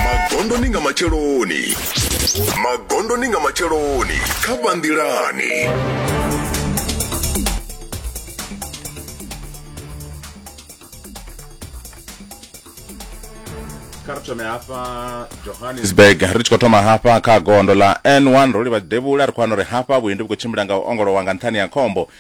magondoni nga matsheloni magondoni nga matsheloni kha vhanḓilani kha ri thome hafha johannesburg ri tshi khou thoma hafha kha gondo ḽa n1 ro livha devhula ri khou wana uri hafha vhuendi vhu khou tshimbila nga u ongolowa nga nṱhani ya khombo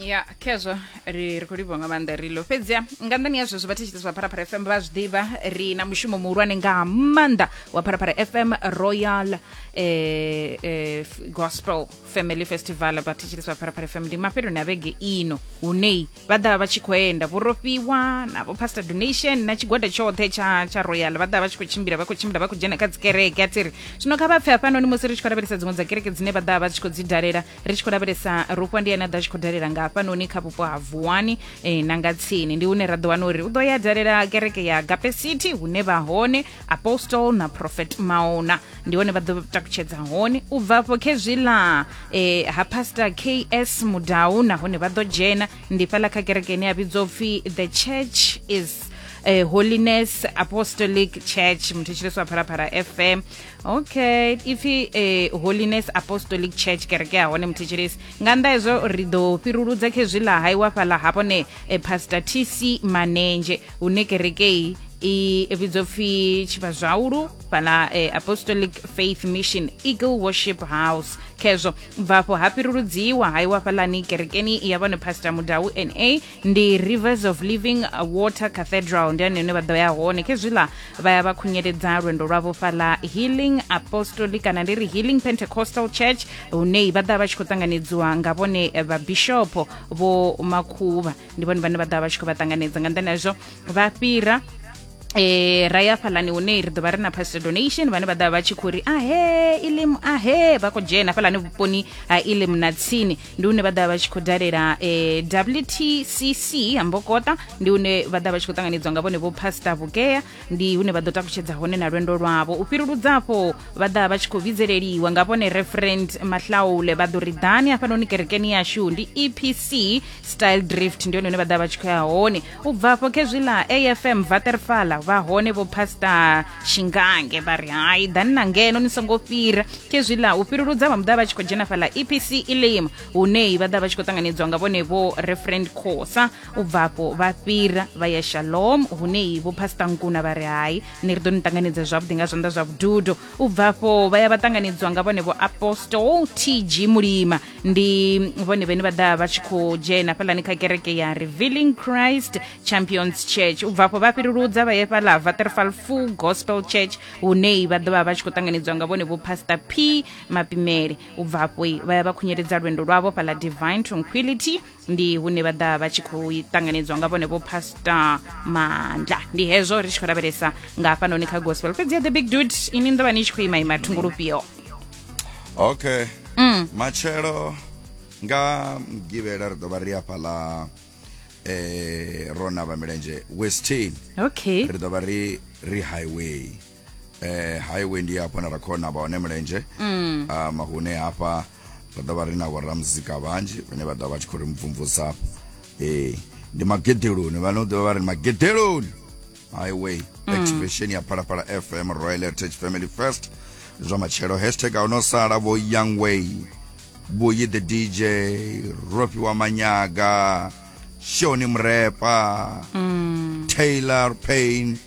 ya khezwo ri ri khou livhuwa nga maanḓa ri ḽo fhedziha nga nḓani ya zwezwo vha thetshelesi zwa pharapara fm vha zwi ḓivha ri na mushumo muhulwane nga maanḓa wa pharapara fm royal eh, eh, F- gospel family festival vha thetshelesi vha pharapara fm ndi mafheloni a vhege ino hunei vha ḓa vha tshi khou enda vhurofhiwa na vho pastor donation na tshigwada tshoṱhe tsha tsha royal vha ḓa vha tshi khou tshimbila vha khou tshimbila vha khou dzhena kha dzikereke a tiri zwino kha vha pfe hafhanoni musi ri tshi khou lavhelesa dziṅwe dza kereke dzine vha ḓa vha tshi khou dzi dalela ri tshi khou lavhelesa rufha ndi ane a ḓo a tshi khou dalela nga hafhanoni kha vhupo ha vuwani eh, na nga tsini ndi hune ra ḓo wana uri u ḓo ya dalela kereke ya gape city hune vha hone apostle na prophet maona ndi hone vha ḓo takutshedza hone u bva afho khezwi ḽa eh, ha pastor ks mudau nahone vha ḓo dzhena ndi fhaḽa kha kereke ine ya vhidzwa u pfi the church is eh, holiness apostolic church muthu tshileso wa phalaphala fm okay ipfi eh, holiness apostolic church kereke ya hone muthetshelesi nga nnḓa hezwo ri ḓo fhiruludza kha hezwi ḽa haiwa fhaḽa hafhone eh, pastor tc manenzhe hune kerekei i vhidzwa pfi tshivhazwaulu fhala eh, apostolic faith mission eagle worship house khezwo bvafho ha fhiruludziwa ha iwa fhalani kerekeni ya vhone pastor mudau na ndi rivers of living water cathedral ndi ani hune vha ḓo ya hone khezwiḽa vha ya vha khunyeledza lwendo lwavho fhaḽa healing apostolic kana ndi ri healing pentecostal church hune vha ḓa vha tshi khou ṱanganedziwa nga vhone vhabishopo vho makhuvha ndi vhone vhane vha ḓa vha tshi khou vha ṱanganedza nga nḓani hazwo vha fhira eh ra ya fhalani hune ri ḓovha ri na pastor donation vhane vha ḓa vha tshi khou ri ahe ilim ahe vha khou dzhena fhalani vhuponi ha ilim na tsini ndi une vha ḓa vha tshi khou dalela eh, wtcc ha mbokota ndi une vha ḓa vha tshi khou ṱanganidzwa nga vhone vho pastor vhukea ndi hune vha ḓo takutshedza hone na lwendo lwavho u fhiruludza afho vha ḓa vha tshi khou vhidzeleliwa nga vhone referent mahlaule vha ḓo ri ḓani hafhanoni kerekeni yashu ndi epc style drift ndi hone hune vha ḓa vha tshi khou ya hone u bvafho khezwiḽa afm vaterfala vha hone vho pastor shingange vha ri hai ḓani na ngeno ni songo fhira khezwiḽa u fhiruludza vha muḓa vha tshi khou dzhena fhaḽa epc elim hunei vha ḓa vha tshi khou ṱanganedzwa nga vhone vho referent khosa u bvafho vha fhira vha ya shalom hunei vho pastor nkuna vha ri hai ni ri ḓo ni ṱanganedza zwavhuḓi nga zwanḓa zwa vhududo u bvafho vha ya vha ṱanganedzwa nga vhone vho apostol tg mulima ndi vhone vhene vha ḓa vha tshi khou dzhena fhalani kha kereke ya revealing christ champions church u bva afho vha fhiruludza vha ye fhala vaterfal full gospel church hunei vha ḓovha vha tshi khou ṱanganedziwa nga vhone vho pastor p mapimele u bva afho vha ya vha khunyeledza lwendo lwavho fhala divine tranquility ndi hune vha ḓa vha tshi khou ṱanganedzwa nga vhone vho pastor mandla ndi hezwo ri tshi khou lavhelesa nga hafhanoni kha gospel fhedzi ya the big dude ini ndo vha ni tshi khou ima ima thungo lufhio okay mm. matshelo nga mgivhela ri ḓo vha ri afha ḽa eh rona vha milenzhe westin okay ri ḓo vha ri ri highway eh highway ndi hafha na ra khona vha hone mulenzhe mm. um, hune hafha ra ḓo vha ri na vhoramuzika vhanzhi vhane vha ḓo vha tshi khou ri mvumvusa ee eh, ndi magedeloni vhane u ḓo vha ri magedeloni highway mm. activation ya phalaphala fm royal heritage family first zwa matshelo hashtag a uno sala vho young way vhoyi the dj rofi wa manyaga shoni mrepa mm. taylor payne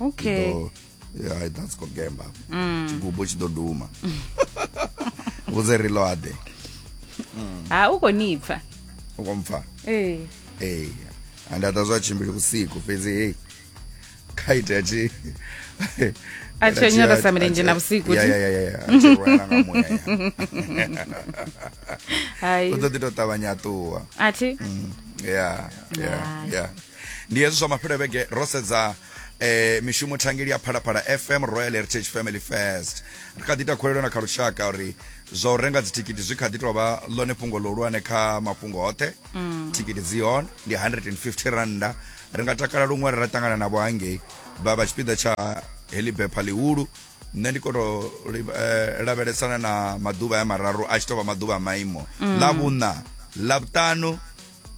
okay Ndo, yeah, i dance ko gemba mm. chigubu tshi ḓo duma vhudze ri loade ha u khou ni pfa u khou mpfa ee ee anda ta zwa tshimbili vhusiku fhedzi hei kha itea tshi a tshi onyora sa milenzhe na vhusiku ya ya ya ya a tshi rwela nga muya ya hai u ḓo ḓi tou ṱavhanya a ṱuwa a thi ya ya ya ndi hezwi zwa mafhelo vhege ro sedza eh mishumo thangeli ya phalaphala fm royal heritage family first ri kha ḓi ita khuwelelo na kha lushaka uri zwa u renga dzithikiti zwi kha ḓi tou vha ḽone fhungo ḽihulwane kha mafhungo hoṱhe mm. thikiti dzi hone ndi 150 randa ri nga takala luṅwe ri ra ṱangana navho hangei vha vha tshipiḓa tsha heḽi bepha ḽihulu nṋe ndi koto eh, lavhelesana na maḓuvha ya mararu a tshi tou vha maḓuvha a maimo mm. ḽa vhuṋa ḽa vhuṱanu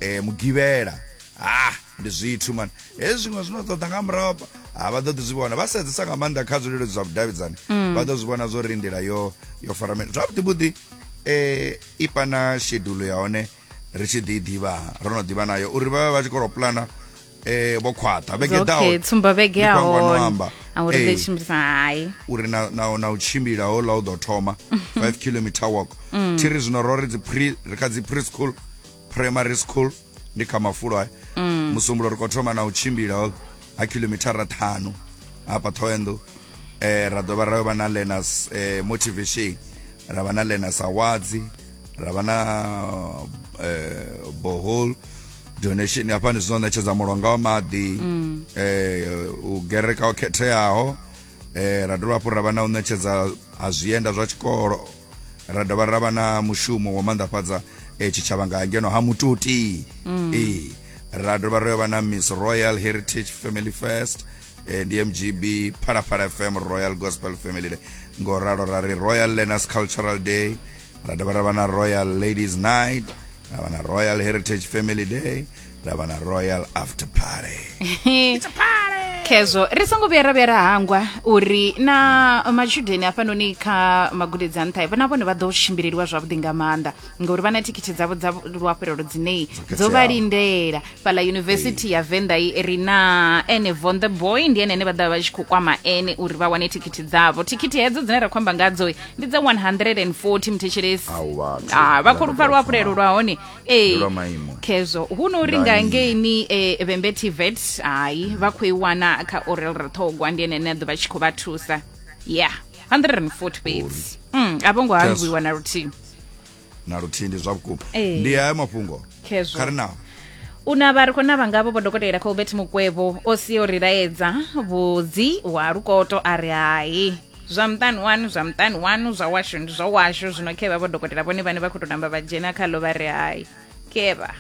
eh mugivhela ah ndi zwithu mani hezwi zwiṅwe zwino ṱoḓa nga murahu ha vha ḓo ḓi zwi vhona vha sedzesa nga maanḓa kha zwileludzi zwa vhudavhidzani mm. vha ḓo zwi vhona zwo ri nḓila yo yo faramela zwavhuḓivhuḓi um i pana shedulo ya hone ri tshi ḓi i ḓivha ro no ḓivha nayo uri vha vhe vha tshi kolo pulana eh vho khwaṱha vhege ḓaho okay tsumba vhege ya hone auri ḓe tshimbisa hai uri na na na u tshimbila ho la u ḓo thoma 5 km walk mm. thiri zwino ro ri dzi pre ri kha dzi preschool primary school ndi kha mafulo hai mm. musumbulo ri kho thoma na u tshimbila ho ha kilomithara ṱhanu hafha thoenḓo eh ra dovha ra vha na learners eh motivation ra vha na learners awards ra vha na eh bohol donation hafha ndi zwino ṋetshedza mulonga wa maḓi mm. eh u gereka o khetheaho eh ra dovha hafhu ra vha na u ṋetshedza ha zwienda zwa tshikolo ra dovha ra vha na mushumo wa manḓafhadza eh tshitshavha nga ngeno ha mututi mm. eh ra dovha ra vha na Miss Royal Heritage Family Fest eh ndi MGB Phalaphala FM Royal Gospel Family Day ngo ralo ra ri Royal Learners Cultural Day ra dovha ra vha na royal ladies night ra vha na royal heritage family day ra vha na royal after party khezwo ri songo vhuya ra vhuya ra hangwa uri na matshudeni hafhanoni kha magudedzi a nṱha vha na vhone vha ḓo tshimbileliwa zwavhuḓi nga maanḓa ngauri vha na thikhithi dzavho dza luafhelelo dzinei dzo vha lindela fhala yunivesithi ya venḓa i ri na ene von the boy ndi ene ene vha ḓa vha tshi khou kwama ene uri vha wane thikhithi dzavho thikhithi hedzo dzine ra khou amba ngadzo ndi dza 140 mthetshelesi Au, vhathu. Ah, vha khou lupfa luhafhulelo lwa hone ee Ndi lwa maimo. khezwo hu no uri nga Ngai. ngeini eh, vhembe tvet hayi vha khou i wana kha orel rithogwa ndi ene ane a ḓo vha tshi khou vha thusa ya 140 fhedzi Mm, a vho ngo hangwiwa na luthihi na luthihi ndi zwa vhukuma Ee. ndi hayo mafhungo Khezwo. kha ri naho u na vha ri khou na vhangavho vho dokotela colbert mukwevho o si o ri laedza vhudzi wa lukoto a ri hai zwa muṱani wanu zwa muṱani wanu zwa washu ndi zwa washu zwino khevha vho dokotela vhone vhane vha khou tou namba vha dzhena khalo vha ri hai khevha